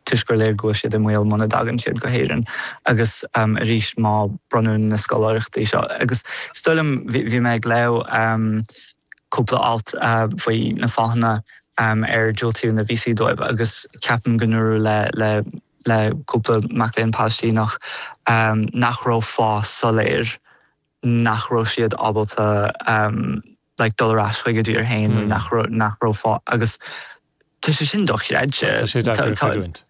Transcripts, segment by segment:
toisc gur léir go bhfuil siad i mbaol muna dtagann siad go hÉirinn agus arís má bronnadh na scoláireachtaí seo agus is dóigh liom bhí mé ag léamh cúpla alt faoi na fáthanna ar diúltaíodh na víosaí dóibh agus ceapaim go ndúradh le le cúpla mac léinn Palaistíneach nach raibh fáth soiléir nach raibh siad ábalta like, dul ar ais chuig a dtír féin nó nach raibh, nach raibh fáth, agus tá sé sin dochreidte. Tá sé deacair a chreidiúint.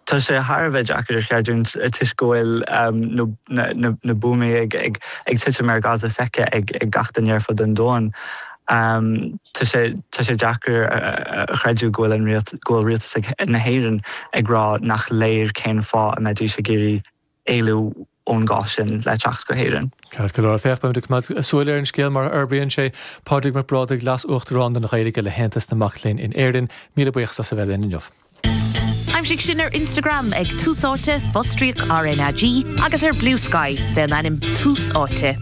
Tá sé thar a bheith deacair a chreidiúint toisc go bhfuil na buamaí ag titim ar Gaza feicthe ag gach duine ar fud an domhain. Tá sé deacair a chreidiúint go bhfuil rialtas na hÉireann ag rá nach léir cén fáth a mbeidís ag iarraidh, éalú ón gcás sin le teacht go hÉirinn. Ceart go leor, féach, beimid ag coimeád súil ar an scéal mar a fhorbraíonn sé. Pádraig Mac Brádaigh, Leas-Uachtarán don Ghaeilge le hAontas na Mac Léinn in Éirinn, míle buíochas as a bheith linn inniu. Aimsigh sinn ar Instagram ag Tús Áite, Fostríoc RnaG, agus ar Bluesky, fén ainm Tús Áite.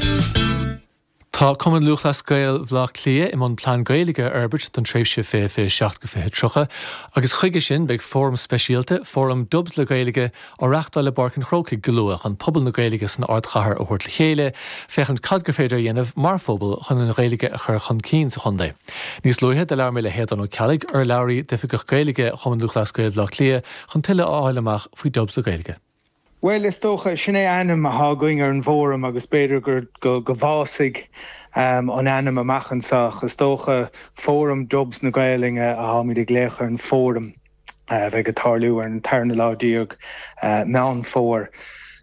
Tá Cumann Lúthchleas Gael Bhaile Átha Cliath i mbun Plean Gaeilge a fhorbairt don tréimhse 2027-2030 agus chuige sin beidh fóram speisialta, Fóram Dubs le Gaeilge, á reachtáil i bPáirc an Chrócaigh go luath chun pobal na Gaeilge san ardchathair a thabhairt le chéile féachaint cad is féidir a dhéanamh mar phobal chun an Ghaeilge a chur chun cinn sa chontae. Níos luaithe do labhair mé le hAodán Ó Ceallaigh, urlabhraí d'Oifigeach Gaeilge Chumann Lúthchleas Gael Bhaile Átha Cliath chun tuilleadh a fháil amach faoi Dubs le Gaeilge. Bhuel, is dócha, sin é ainm athá againn ar an bhfóram agus b'fhéidir gur go, go bhfásfaidh an ainm amach anso ach is dócha Fóram Dubs na Gaolainne atháimid ag glaoch ar an bhfóram a bheidh ag tarlú ar an tarna lá déag Meán Fómhair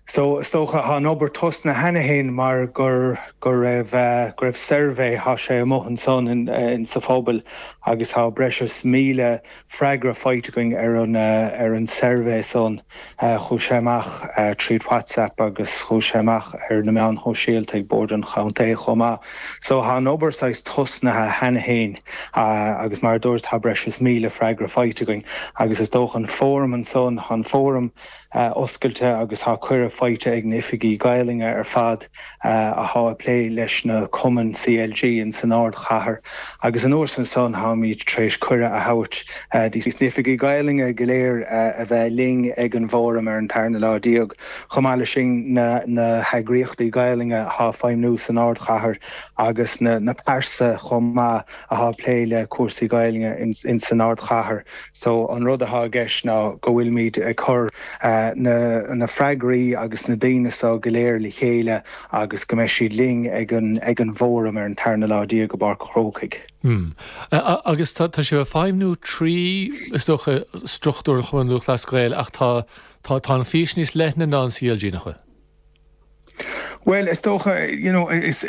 so is dócha athá an obair tosnaithe cheana féin mar gur, go raibh, go raibh suirbhé, athá sé amuigh ansan in, sa phobal agus athá breis is míle freagra faighte againn ar an suirbhé san. Chuaigh sé amach tríd WhatsApp agus chuaigh sé amach ar na meáin shóisialta ag Bord an Chontae chomh maith. So tá an obair saghas tosnaithe cheana fhéin agus mar a dúrt tá breis is míle freagra faighte againn agus is dócha an fóram ansan, tá an fóram, oscailte agus tá cuireadh faighte ag na oifigigh Ghaelainne ar fad atá ag plé leis na cumainn CLG in san ardchathair agus anuas air san táimid tar éis cuireadh a thabhairt dos na oifigigh Ghaelainne go léir a bheith linn ag an bhFóram ar an tarna lá déag. Chomh maith leis sin na heagraíochtaí Gaelainne atá ag feidhmniú san ardchathair agus na pearsa chomh maith. atá ag plé le cúrsaí Gaelainne in san ardchathair. So an rud atá i gceist ná go bhfuilimid ag cur na freagraí agus na daoine so go léir le chéile agus go mbeidh siad linn ag an bhFóram ar an tarna lá déag i bPáirc an Chrócaigh. Mh. Agus tá sibh ag feidhmniú trí, is dócha, struchtúr an Chumainn Lúthchleas Gael ach tá an fhís níos leithne ná an CLG, nach bhfuil? Bhuel, is dócha, you know, is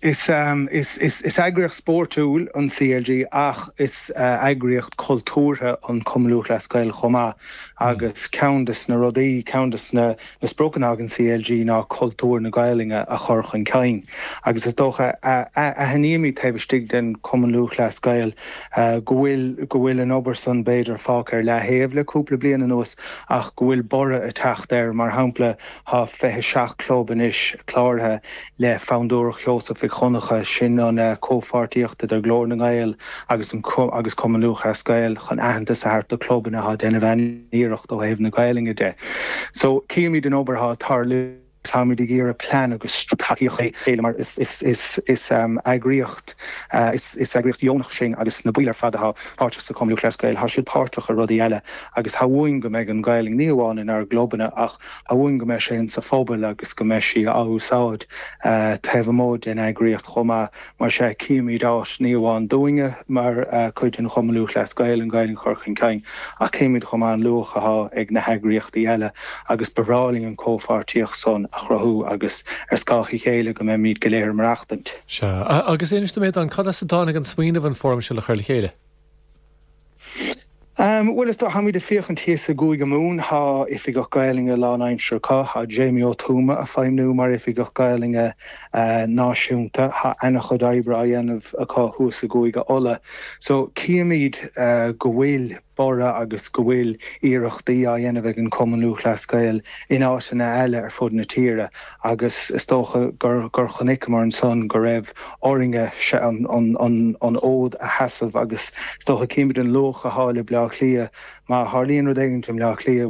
eagraíocht spórtúil an CLG ach is eagraíocht cultúrtha an Cumann Lúthchleas Gael chomh maith agus ceann de na rudaí, ceann de na spriocanna ag an CLG ná cultúr na Gaelainne a chur chun cinn agus is dócha, aithnímid taobh istigh den Chumann Lúthchleas Gael go bhfuil, go bhfuil an obair san b'fhéidir fágtha ar leataobh le cúpla bliain anuas ach go bhfuil borradh ag teacht air mar shampla, Tá 27 club anois cláraithe le Fondúireacht Sheosaimh Mhic Dhonnchadha, sin an comhpháirtíocht idir Glór na nGael agus an agus Cumann Lúthchleas Gael chun aitheantas a thabhairt do clubanna atá ag déanamh an-iarracht ó thaobh na Gaelainne de. So címid an obair atá ag tarlú agus táimid ag iarraidh plean agus tacaíocht a chur le chéile mar is is eagraíocht is eagraíocht dheonach sinn agus na baill ar fad atá páirteach sa Cumann Lúthchleas Gael, tá siad páirteach i rudaí eile agus tá uainn go mbeidh an Ghaelainn ní amháin inár gclubanna ach amháin go mbeidh sé insa phobal agus go mbeidh sí á úsáid taobh amuigh den eagraíocht chomh maith. Mar sea, címid áit ní amháin dúinne mar chuid den Chumann Lúthchleas Gael, an Ghaelainn a chur chun cinn, ach címid chomh maith an luach athá ag na heagraíochtaí eile agus ba bhreá linn an comhpháirtíocht san a chruthú agus ar scáth a chéile go mbeimid go léir ag maireachtaint. Sea, agus inis dom, a Aodáin, cad as a dtáinig an smaoineamh an fóram seo a chur le chéile? Bhuel, is dócha, táimid ag féachaint thíos i gCúige Mumhan, tá Oifigeach Gaelainne lánaimseartha acu, tá Jamie Ó Tuama a' feidhmniú mar Oifigeach Gaelainne Náisiúnta, tá ana-chuid oibre á dhéanamh acu thuas i gCúige Uladh. So, címid go bhfuil borradh agus go bhfuil iarrachtaí á dhéanamh ag an Chumann Lúthchleas Gael in áiteanna eile ar fud na tíre. agus is dócha gur chonaiceamar ansan go raibh orainne an fód a sheasamh agus is dócha, címid an luach athá le Bleá Cliath, má tharlaíonn rud éigin i mBleá Cliath,